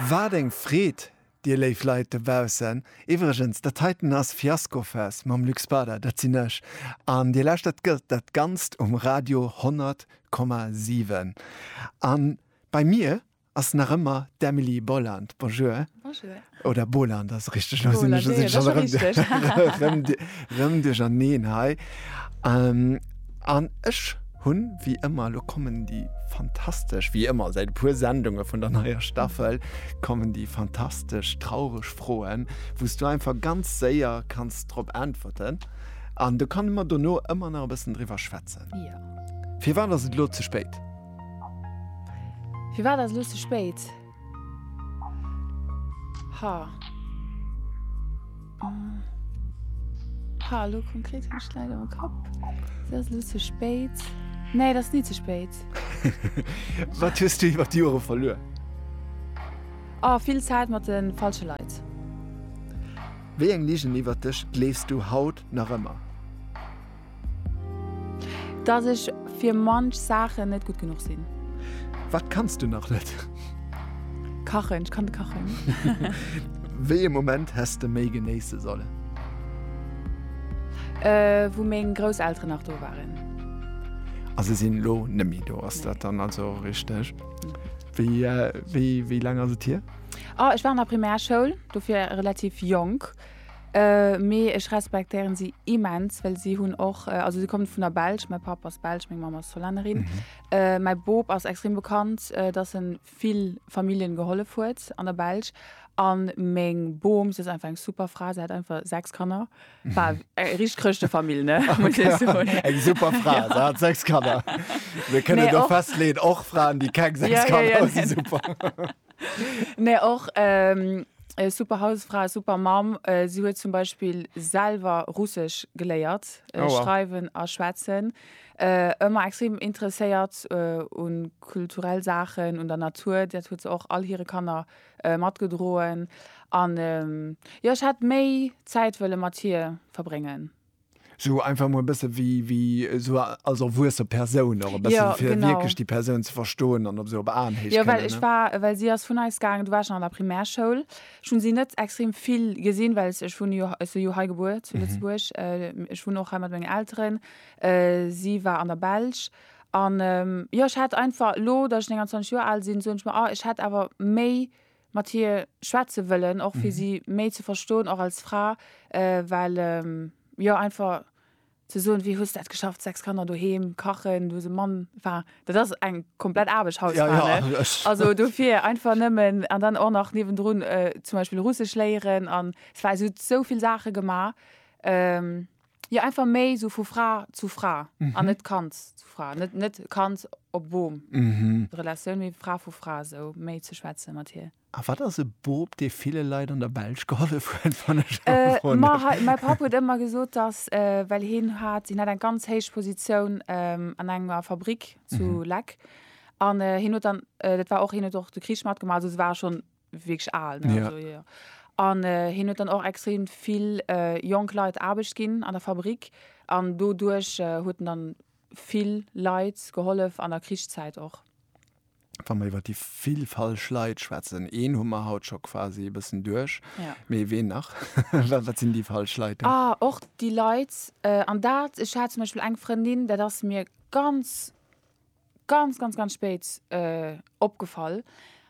Waat eng Freed dir léif Leit dobaussen. Iwwregens dat heiten ass Fiaskofest mam Luc Spada, dat sinn ech, an dir lauschtert dat ganzt um Radio 100,7 an bei mir ass nach ëmmer d'Emily Boland. Bonjour. Bonjour. Oder Boland ass richteg, elo sinn ech u sech erëm rëm duercherneen hei. An ech hunn, wéi ëmmer, elo kommen déi fantastesch, wéi ëmmer säit e puer Sendunge vun der neier Staffel, kommen déi fantastesch traureg Froen, wou s du einfach ganz séier kanns drop äntwerten. An do kann e mer dono ëmmer nach e bëssen driwwer schwätzen. Firwat ass et elo ze spéit? Firwat ass elo ze spéit? Ha. Mm. Ha, lo konkret hun ech leider am Kapp. Dat ass lo ze spéit. Nee, dat ass ni ze spéit. Wat hues du iwwer d'Jore verluer? Ah, vill Zäit mat de falsche Leit. Wéi eng Ligen iwwer dech gleefs du haut nach ëmmer? Dass ech fir manch Saachen net gutt genuch sinn. Wat kanns du nach net? Kachen, ech kann net kachen. Wéi e Moment häss de méi genéisse sollen? Wou meng Grousselteren nach do waren. A se sinn elo net méi do, ass dat dann also richteg? Wéi laang ass et hier? Ech war an der Primärschoul, dofir relativ jonk. Mee ech respektéieren si immens, well si hunn och, also si kommen vun der Belsch, mäi Papp ass Belsch, meng Mamm ass Hollännerin. Mäi Bop ass extrem bekannt, dass en vill Familljen gehollef huet an der Belsch. An meng Bom, si ass einfach eng super Fra, si hat einfach 6 Kanner, war eng richteg Chrëschtefamill, ne, muss ech soen. Eng super Fra, si hat 6 Kanner. Mir kënnen do festleeën, och Fraen, déi keng 6 Kanner hunn, si super. Mä och e super Hausfra, e super Mamm. Si huet zum Beispill selwer Russesch geléiert, schreiwen a schwätzen. Ëmmer extrem interesséiert u kulturell Saachen, un der Natur. Dat huet se och all hire Kanner matgedroen. An jo, ech hätt méi Zäit wëlle mat hir verbréngen. Sou einfach mol e bësse wéi, wéi sou als erwuesse Persoun och e bëssen, ja, fir wierklech déi Persoun ze verstoen an op sou op Aenhéicht. Jo, well ech war, well si ass vun eis gaangen, du war ech an der Primärschoul, ech hunn si net extrem vill gesinn, well ech wunne jo, ech si jo hei gebuer zu Lëtzebuerg, ech wunnen och hei mat mengen Elteren, si war an der Belsch an jo, ech hätt einfach elo, datt ech 29 Joer al sinn, soen ech mer, ah, ech hätt awer méi mat hir schwätze wëllen och fir si méi ze verstoen och als Fra well jo einfach ze soen wéi hues dat geschafft 6 Kanner doheem kachen du hues e Mann enfin dat ass eng komplett Aarbecht Hausfra ne also dofir einfach nëmmen an dann och nach niewendrun zum Beispill Russesch léieren an es war esou souvill Saache gemaach. Jo einfach méi sou vu Fra zu Fra an net Kand zu Fra, net net Kand op Boom. Relatioun méi Fra vu Fra sou méi ze schwätze mat hir. A wat ass e Boob dee ville Leit an der Belsch gehollef huet wann ech elo gefrot Ma hat? hei mäi Papp huet ëmmer gesot dass well hien hat hien hat eng ganz héich Positioun an enger Fabrick zu Leck an hien huet dann dat war och hien huet och de Krich matgemaach also se ware schonn wierklech al. Ne? Ja. Also, ja. An äh, hien huet dann och extrem vill äh, jonk Leit Aarbecht ginn an der Fabrik. An doduerch äh, huet en dann vill Leit gehollef an der Krichszäit och. Wa mer iwwer déi vill falsch Leit schwätzen, een hu mer haut scho quasi e bëssen duerch. Ja. Mee ween nach? Wa- Wat sinn déi falsch Leit? Ah, och déi Leit, äh, an dat, ech hat zum Beispiel eng Frëndin, dat ass mir ganz ganz, ganz, ganz spéit äh, opgefall.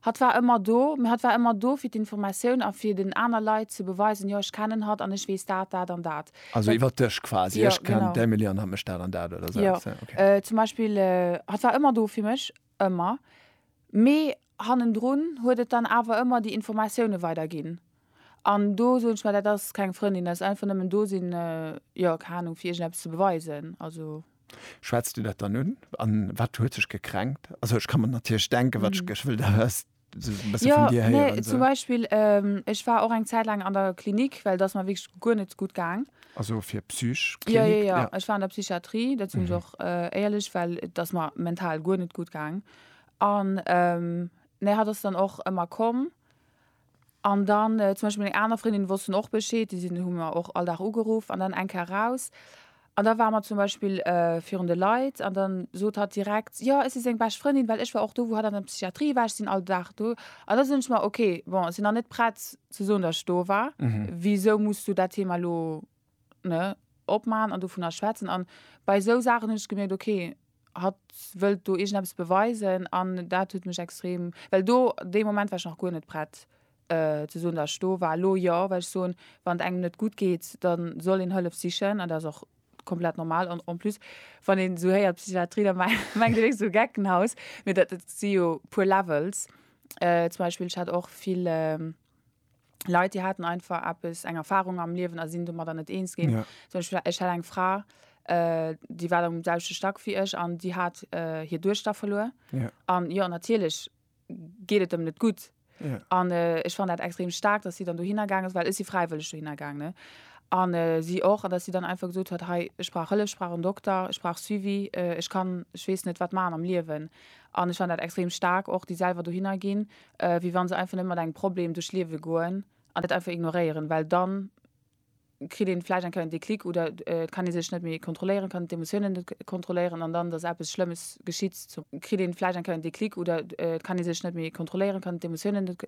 Hat war ëmmer do, mir hat war ëmmer do fir d'Informatioun a fir den aner Leit ze beweisen, jo ech kennen hat an ech weess dat, dat an dat. Also iwwer dech quasi, ja, ech kennen genau. d'Emily an hat mech dat an dat oder so. Ja. Okay. Äh, zum Beispiel, äh, hat war ëmmer do fir mech, ëmmer. Mee Hannendrun huet et dann awer ëmmer déi Informatioune weider ginn. An do soen ech mer, dat ass keng Frëndin, dat ass einfach nëmmen do sinn, jo, keng Ahnung, fir iergendeppes ze beweisen. Also. Schwätzt Dir dat dann un? An wat huet sech gekränkt? Also ech ka mer natierlech denken, wat ech wëll da res, sou e bësse vun Dir héieren. Jo, nee, zum Beispill, ech war och eng Zäit laang an der Klinik, well et ass mer wierklech guer net gutt gaang. Also fir Psych. Jo, jo, jo, ech war an der Psychiatrie, dat sinn ech och éierlech, well et ass mer mental guer net gutt gaang. An nee hat ass dann och ëmmer komm. An dann zum Beispill meng aner Frëndinnen wossten och Bescheed, déi sinn hu mer och all Dag ugeruff an dann eng Kéier raus. An da ware mer zum Beispill virun de Leit an dann sot hatt direkt, jo ech si seng bescht Frëndin, well ech war och do wou hatt an der Psychiatrie war, ech sinn all Dag do. An da soen ech mer, ok bon ech sinn nach net prett ze soen, datt ech do war, wisou muss du dat Thema elo ne, opmaachen an dovunner schwätzen. An bei esou Saachen hunn ech gemierkt, ok, hatt wëllt do iergendeppes beweisen an dat huet mech extrem, well do, dee Moment war ech nach guer net prett ze soen, datt ech do war. Elo jo, well ech soen, wann et engem net gutt geet, da soll een Hëllef sichen an dat ass och komplett normal. An en plus, wann een esou héiert Psychiatrie, da mengt een esou Geckenhaus, mee dat si jo puer Levels. Zum Beispill, ech hat och vill Leit déi haten einfach eppes eng Erfahrung am Liewen a sinn domadder net eens ginn. Ja. Zum Beispiel, ech hat eng Fra, äh, déi war am selwechte Stack wéi ech an déi hat äh, hir Duechter verluer. Ja. An jo, natierlech geet et em net gutt. Ja. An äh, ech fand dat extrem stark, dass sie dann dohinner gaang ass, well ech si fräiwëlleg dohinner gaang. Ne? An äh, sie och, an dass sie dann einfach gesot huet, hei, ech brauch Hëllef, ech brauch en Dokter, ech brauch Suivi, äh, ech kann, ech weess net wat machen am Liewen. An ech fand dat extrem stark, och déi selwer dohinner ginn, wéi wann se einfach net mat engem Problem duerch d'Liewe goen an dat einfach ignoréieren, well dann kritt een vläicht eng Kéier en Déclic oder et kann ee sech net méi kontrolléieren, kann d'Emotiounen net kontrolléieren an dann, dass eppes Schlëmmes geschitt zum kritt een vläicht eng Kéier en Déclic oder et kann ee sech net méi kontrolléieren, kann d'Emotiounen net.